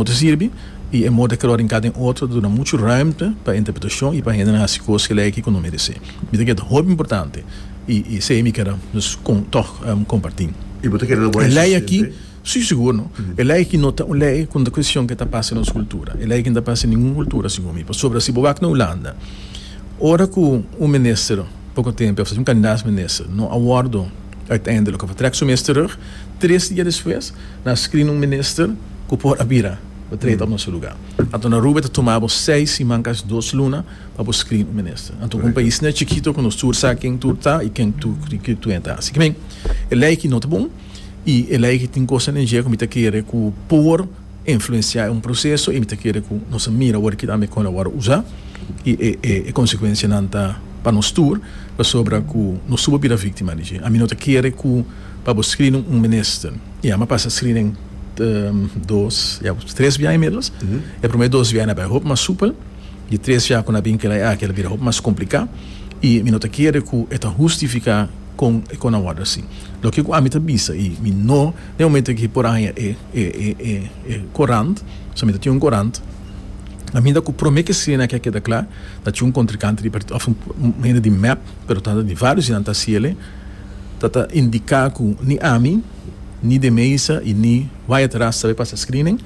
Bo ta sirbi, i e mor ta keda ora hinká den otro ta duna muchu rùmte pa interpretashon i pa hendenan hasi kos ke lei ki ku no meresé. Mi ta keda hopi importante, i i esei mi keda dus kon tòg kompartí. I bo ta keda lo bo a insistente? Sí, sigur no. E lei aki no ta un lei ku no ta kwestion ke ta pasa nos kultura. E lei aki no ta pasa den ningun kultura segun mi. Pasobra si bo wak na Hulanda, ora ku un minister poko tempu a fasi un kandidat minister no a wòrdu uitende loke a trek su mes terug, Tres dia despues nan a screen un minister cu por a bira pa treta op noso lugar. Anto na Aruba e ta tuma bo seis siman casi dos luna pa bo screen un minister. Anto cu un pais ne chikito cu nos tur sa ken tur ta y ken tur cu e ta. Así que men e ley aki no ta bon y e ley aki tin cosnan den dje cu mi ta kere cu por. Influenciá e un proceso y mi ta kere cu nos a mira awor kico a mi con a worde usa y e consecuencianan ta pa nos tur pasobra cu nos tur por bira victima di dje. A mi no ta kere cu pa bo screening un minister y a mi a pasa screening dos ya cu tres biaha inmiddels. E prome dos biaha na bay hopi mas supel. Di tres biaha cu na bin kila e aki a bira hopi mas complicá y mi no ta kere cu e ta hustificá con e con a worde así. Loke cu a mi ta bisa y mi no. Den e momento aki por haña e e korant, so mi ta tin un korant, a mi ta ku promé ke sina aki a keda kla, ta cu un kontrikante di partido of un hende di mep, pero ta di varios di nan ta siele, ta ta indiká ku ni ami, ni De Meza i ni Wyatt Ras ta be pasa screening.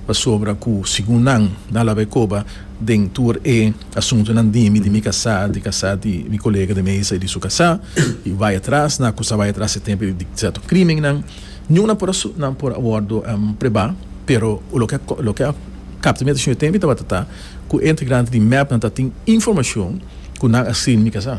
Pasobra ku segun nan, nan la bai koba den tur e asuntunan di mi, di mi kasá, di kasá di mi kolega di mesa i di su kasá, i bai atras na akusá, bai atras e tempu di sèrto krimennan. Niun nan por nan por a wòrdu prebá, pero loke loke a kapta mi atenshon e tempu tabata ta ku e integrante di mep nan tatin informashon ku nan a skiri na mi kasá.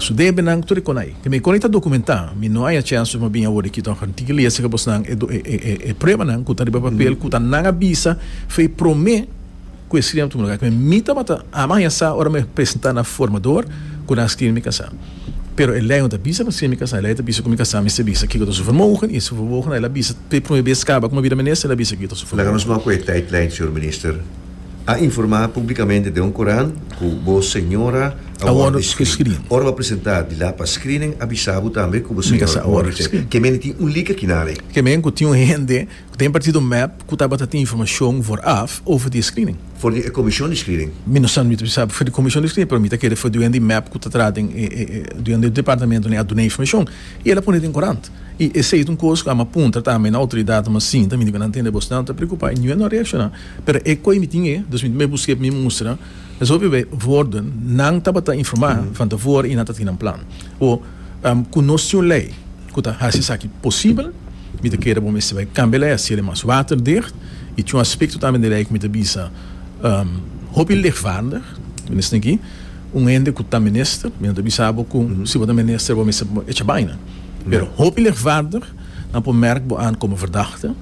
Su debenan ku tur e konai. Te mi koni ta dokumentá. Mi no haya chèns of mi a bini awor diki tòg. Tin ki lesa ka bosnan e do e pruebanan ku ta riba papel ku ta nan a bisa fe promé ku e skiri nan tudu luga. Ku mi tabata ama haya sa ora mi a presentá na formador ku nan skiri mi kasá. Pero e lei no ta bisa pa skiri mi kasá. E lei ta bisa ku mi kasá mester bisa kiko ta su vermogen i su vermogen ta el a bisa. Fe promé bes kaba ku mi bida mines el a bisa kiko ta su vermogen. Laga nos mou ku e taitlijn, señor Minister. a informá públikamente den un kurant ku bo señora a wòrdu skrin. Ora bo a presentá di la pa skrinen, avisá bo tambe ku bo señora a wòrdu skrin. Ke mende tin un lika kinale? Ke mende ku tin un hende ku ta impartí do mep ku tabata tin informashon vòraf over di e skrinen? For di e komishon di skrinen. Mi no sa, mi ta bisa for di komishon di skrinen, pero mi ta kere for di wen di mep ku ta trata den e di wen di e departamentonan a duna informashon i el a pone den kurant. I esei ta un kos ku ame a puntra tambe na outoridatnan, mas sinta mi niga nan tende bosnan ta preokupá i niun no a reakshoná. Pero e koe mi tin e, dus mi mei buske pa mi mustra, es hopi bay worden, nan tabata informa van tevoren y nan ta tin nan plan. O, cu nos tin un ley cu ta haci esaki posibel, mi ta kere bo mester bay cambia ley, haci el mas waterdicht, y tin un aspecto tambe den ley cu mi ta bisa hopi lichtvaardig, minister aki, un hende cu ta minister, mi no ta bisa bo cu si bo ta minister bo mester echa baynan, pero hopi lichtvaardig, nan por merk bo aan como verdachte.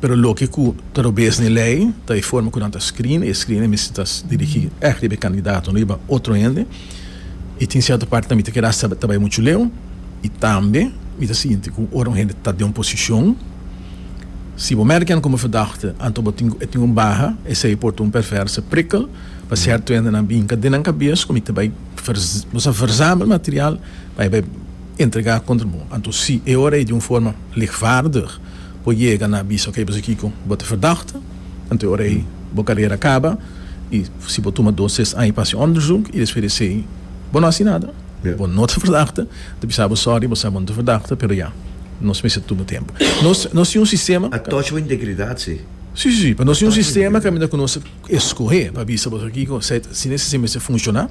Pero loke ku ta robes n'e lei ta e forma ku nan ta skrin. E skrin ei misti ta dirigí ègt riba e kandidato, no riba otro hende. I tin sierto parti mi ta keda hasta ta bai muchu leu. I tambe mi ta sinti ku ora un hende ta den un posishon, si bo mèrk nan komo verdagte anto bo tin e tin un baha, esei por ta un perverse prikkel pa sierto hende. Nan binka den nan kabes ku mi ta bai bo sa verzamel material pa e bai entregá kontra bo. Anto si e ora ei di un forma lichtvaardig. Bo yega na bisa oke pasobra kiko bo ta verdachtig anto ora ei bo karera a kaba i si bo tuma dos tres aña pa hasi onderzoek i despues di esei bo no hasi nada bo no ta verdachtig ta bisa bo sòri bo sa bo no ta verdachtig pero ya nos mester tuma tempu nos nos tin un sistema. A touch bo integridad si. Si si si pero nos tin un sistema caminda ku nos ta. Escohe pa bisa boso kiko set si ne sistema mester funciona.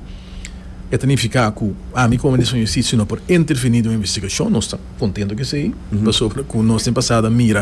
E ta nifica cu ami como Minister van Justicia no por interveni den un investigacion. Nos ta contento cu esey pasobra cu nos den pasado a mira